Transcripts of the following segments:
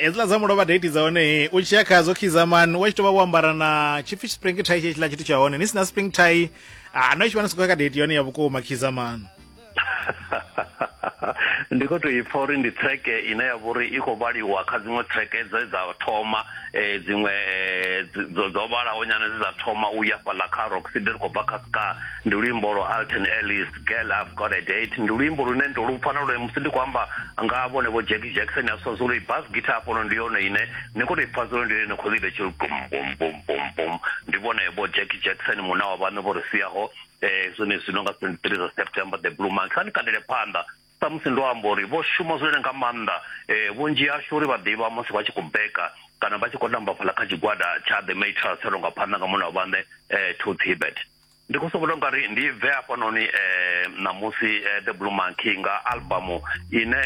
hedziḽa dza mulovha date dza hone u tshiya khadzo khizamani wa tshi tou vha wo ambara na tshipfi spring tie tshetshiḽa tshithu tsha hone ni si na spring tie ah, no tshi vha ni sokou ya ka date yone ya vhukuma khizamani ndi khou tou ipfa uri ndi treke ine ya vha uri i khou vhaliwa kha dziṅwe treke dze dza thoma um dziṅwe eh, dzo vhalaho nyana dze dza thoma u ya fhaḽa kha rock city ri khou bva kha ska ndi luimbo lwa alton ellis girl i've got a date ndi luimbo lune ndo lu pfa na lune musi ndi khou amba nga vhone vho jackie jackson a sonzolo i bas guitar hafhono ndi yone ine ni khou to i pfa zolo ndi yone khou ḽibe tshiri bum bum bum bum bum ndi vhone vho jackie jackson muna wa vhaṋe vho ri siaho um zwone zwino nga twenty three zwa september the blue monk kha ni kandele phanḓa samusi ndo amba uri vho shuma zwone nga maanḓa um vhunzhi hashu uri vha ḓivha musi vha tshi khou beka kana vha tshi khou tamba fhaḽa kha tshigwada tsha the matras tsha longa phanḓa nga muna wa vhaṋe um to tibet Ndi khou sokou tou nga ri ndi bve hafhanoni ṋamusi The Blue Monkey nga album ine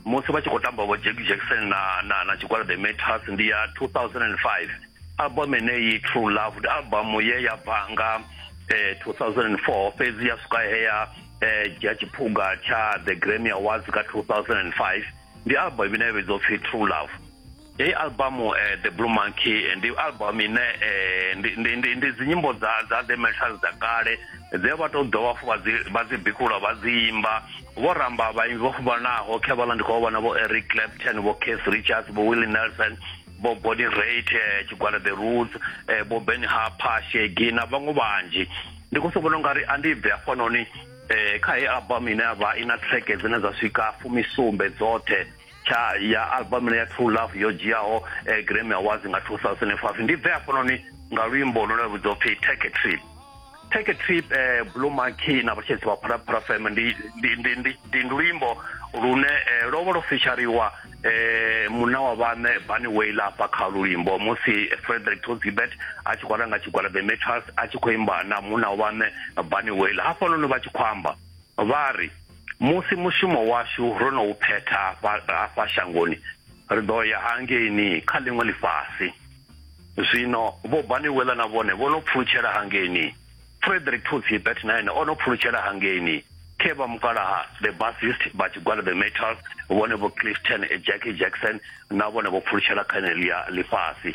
musi vha tshi khou tamba vho Jack Jackson na na na tshigwada The Meters ndi ya 2005 album yeneyi True Love ndi album ye ya bva nga 2004 fhedzi ya swika he ya dzhia tshiphuga tsha The Grammy Awards nga 2005 ndi album ine ya vhidzwa upfhi True Love. Heyi album uh, eh, The Blue Monkey eh, ndi album ine eh, ndi ndi ndi ndi dzinyimbo dza dza The Metals dza kale dze vha to dovha fu vha dzi vha dzi bikula vha dzi imba vho ramba vhaimbi vho fhambanaho kha vhala ndi khou vhona vho Eric Clapton vho Keith Richards vho Willie Nelson bo Body Rate eh, tshigwada The Roots eh, bo Ben Harper Shaggy na vhaṅwe vhanzhi ndi khou sokono nga ri a ndi bve afhanoni eh kha heyi album ine ya vha i na track dzine dza swika fumisumbe dzoṱhe tsha ya album ya true love yo dzhiaho eh, grammy awards nga 2005 ndi bve hafhanoni nga luimbo lune vhudzwa upfi take a trip take a trip eh, blue monkey na vhatshedzi vha phalaphala fm ndi, ndi, ndi, ndi, ndi luimbo lune eh, lwo vha lwo fishariwa eh, muna wa vhane bani waila afha kha lulimbo musi frederick tozibet a tshi khou ranga tshigwada the metals a tshi khou imba na muna wa vhane bani waila hafhanoni vha tshi khou amba vha ri musi mushumo washu ro no u phetha hafha shangoni ri ḓo ya hangeini kha ḽiṅwe ḽifhasi zwino vho baniwela na vhone vho no pfulutshela hangeini frederick tooth hibert na ene o no pfulutshela hangeini khe vha mukalaha the bassist vha tshigwada the metal vhone vho clifton jackie jackson na vhone vho pfulutshela kha ḽia ḽifhasi